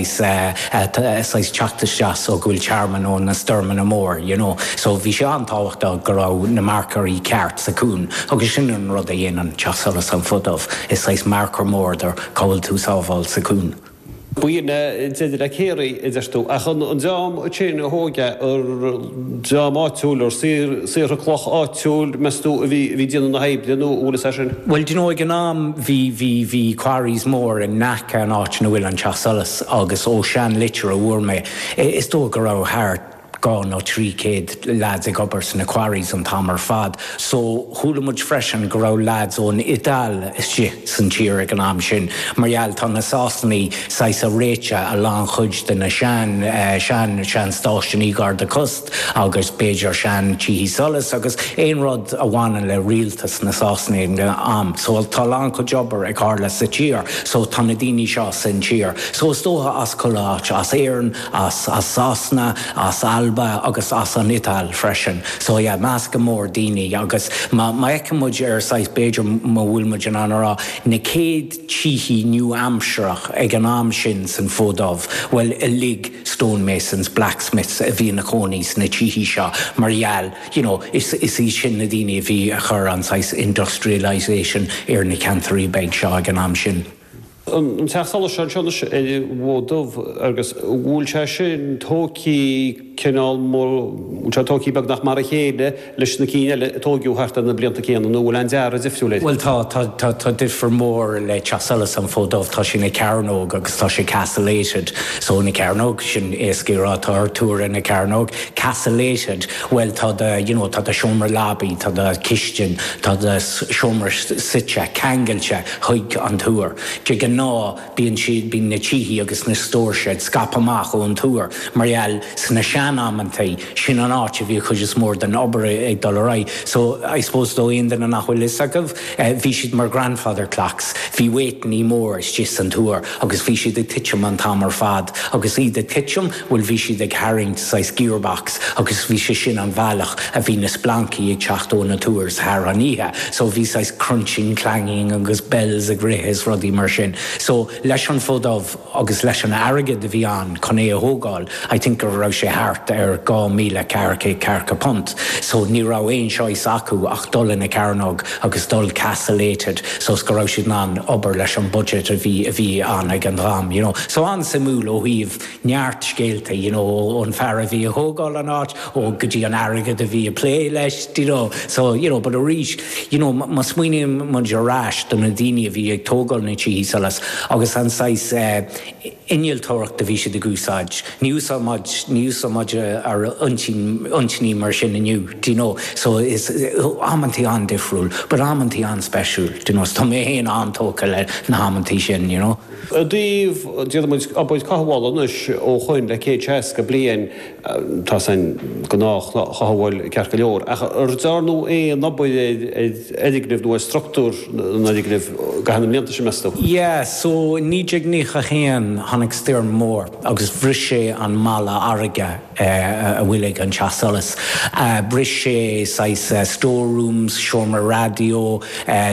saghas teacht isteach so go bhfuil tearmann ó na stoirmeanna mór you know so bhí sé an-tábhachtach go raibh na marcóirí ceart sa chuan agus sin an rud a dhéanann teach solais an Fód Dubh, is saghas marcóir mór do cá bhfuil tú sábháil sa cuan. Bíonn, b'fhéidir le céarrai, a deir tú, ach an dream céanna a thóg a. dream áitiúil nó saortha cloch áitiúil, meastú, a bhí déanamh na hoibre nó an bhfuil fhios air sin? Bhuel, do you know, ag an am bhí, bhí, bhí quarries mór in aice an áit ina bhfuil an Teach Solais agus ó sean litir a bhfuair mé, is dóigh go raibh thart dhá nó trí céad lads ag obair sna quarries an t-am ar fad. So, chuala muid freisin go raibh leaids ón Iodáil istigh san tír ag an am sin mar gheall tá na Sasanaigh saghas a' réiteadh a lán chuid de na sean, sean, sean stáisiúnaí garda cósta agus b'fhéidir sean tithí solais agus aon rud a bhaineann le rialtas na Sasanaigh ag an am. So tá a lán chuid obair ag tharla sa tír so tá na daoine seo san tír. So is dócha as chuile áit, as Éireann, as Sasana, as Alba agus as an Iodáil freisin. So yeah, meascadh mór daoine agus má fheiceann muid ar saghas b'fhéidir má bhfuil muid in ann a rá na chéad tithí nua-aimsireach ag an am sin san Fód Dubh, bhuel uilig stone masons, blacksmiths a bhí ina chónaí sna tithe seo mar gheall, you know, is is iad sin na daoine a bhí a chur an saghas industrialisation ar na ceantairí beag seo ag an am sin. an teach solais seo anseo anois ar an bhFód Dubh agus bhfuil sé sin tógthaí cineál mar, bhfuil sé tógthaí beagnach mar a chéile leis na cinn eile a tóigeadh thart ar na blianta céanna, nó an bhfuil aon dearadh difriúil air? Bhuel tá, tá, tá, tá difear mór le teach solais an Fód Dubh, tá sé ina chearnóg agus tá sé castellated, so ina chearnóg, sin éasca a rá, tá túr ina chearnóg, castellated, bhuel tá do, you know, tá do seomra leabaí, tá do cistin, tá do seomra suite, ceangailte. Chuig an túr. De ghnáth, bíonn siad, bíonn na tithe agus na stores ag scaipeadh amach ón túr mar gheall sna sean-amantaí, sin an áit a bhí an chuid is mór den obair ag dul ar aghaidh. So, I suppose do aon duine nach bhfuil fhios acu, bhí siad mar grandfather clocks. Bhí weightannaí mór istigh san túr agus bhí siad ag titim an t-am ar fad agus iad ag titim, Bhuel, bhí siad ag tharraingt saghas gearbox agus bhí sé sin an bhealach a bhí na splancaí ag teacht ó na túrs thar an oíche. So bhí saghas crunching, clanging agus bells ag rith is rudaí mar sin. So leis an Fód Dubh agus leis an airgead a bhí ann chun é a thógáil, I think go raibh sé thart ar dhá míle ceathracha, ceathracha punt. So ní raibh aon choice acu ach dul ina cearnóg agus dul castellated so is go raibh siad in ann obair leis an budget a bhí, a bhí ann ag an am, you know. So an-suimiúil ó thaobh. neart scéalta you know ón fear a bhí a thógáil an áit ó go dtí an t-airgead a bhí a plé leis do you know so you know but arís you know má smaoiníonn muid ar ais do na daoine a bhí ag tógáil na tithe solas agus an saghas innealtóireacht a bhí siad ag úsáid ní úsáideann muid ní úsáideann muid ar intinní mar sin inniu do you know so is amantaí an-difriúil but amantaí an-speisiúil do you know so tá mé féin an-tógtha le na hamantaí sin you know. I dtaobh, déanamh obair cothabhála anois ó shin le céad seasca bliain, tá's, an ghnáthchothabháil ceart go leor, ach ar dearnadh aon obair ar an fhoirgneamh nó ar struchtúr an fhoirgnimh thar na mblianta sin, meas tú? Yeah, so i naoi déag naocha haon tháinig stoirm mhór agus bhris sé an mballa farraige. a bhfuil ag an teach solais. Bhris sé saghas store rooms, seomra raidió,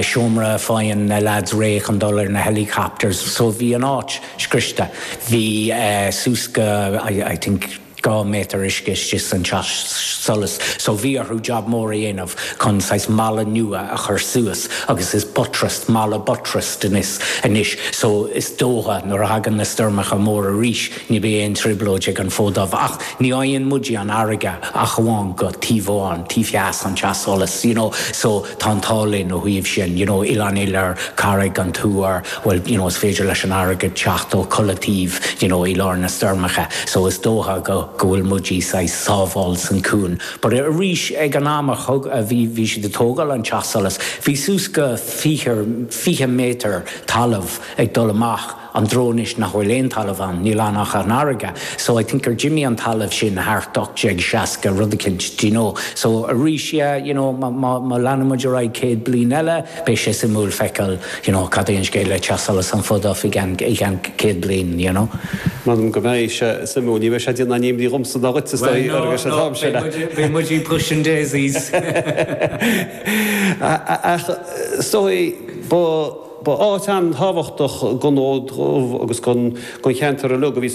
seomra a faigheann na lads réidh chun dul ar na helicopters. So bhí an áit scriosta. Bhí suas go I think dhá méadar uisce istigh san teach solais. So bhí orthu job mór a dhéanamh chun saghas balla nua a chur suas agus is buttressed, balla buttressed anois. So is dócha nuair a thagann na stoirmeacha móra arís, Ní bheidh aon trioblóid ag an Fód Dubh. Ach ní fhaigheann muidí an fharraige ach amháin ó thaobh amháin, taobh theas an teach solais, you know, so tá an t-ádh linn ó thaobh sin, you know, Oileán an Iolair, Carraig an Tuair, bhuel, you know, is féidir leis an fharraige teacht ó chuile taobh, you know, i lár na stoirmeacha. So is dócha go, go bhfuil muidí saghas sábháil san cuan. But arís, ag an am a thug, a bhí, bhí siad ag tógáil an teach solais, bhí suas go fiche, fiche méadar talamh ag dul amach. sa dtreo anois nach bhfuil aon talamh ann, níl ann ach an fharraige, so I think gur d'imigh an talamh sin thart 1860 rud eicint, do you know. So arís yeah, you know, má leanann muid ar aghaidh céad bliain eile, beidh sé suimiúil feiceáil, you know, cad é an scéal le Teach Solais an Fód Dubh i gceann céad bliain, you know. M'anam go mbeidh sé suimiúil, ní bheidh sé ag déanamh aon imní dhomsa ná dhuit is dóigh, Well no, no, beidh muid ag pushing daisies. Ach is dóigh, ba. Ba áit an-tábhachtach don Fhód Dubh agus don cheantar uilig a bhí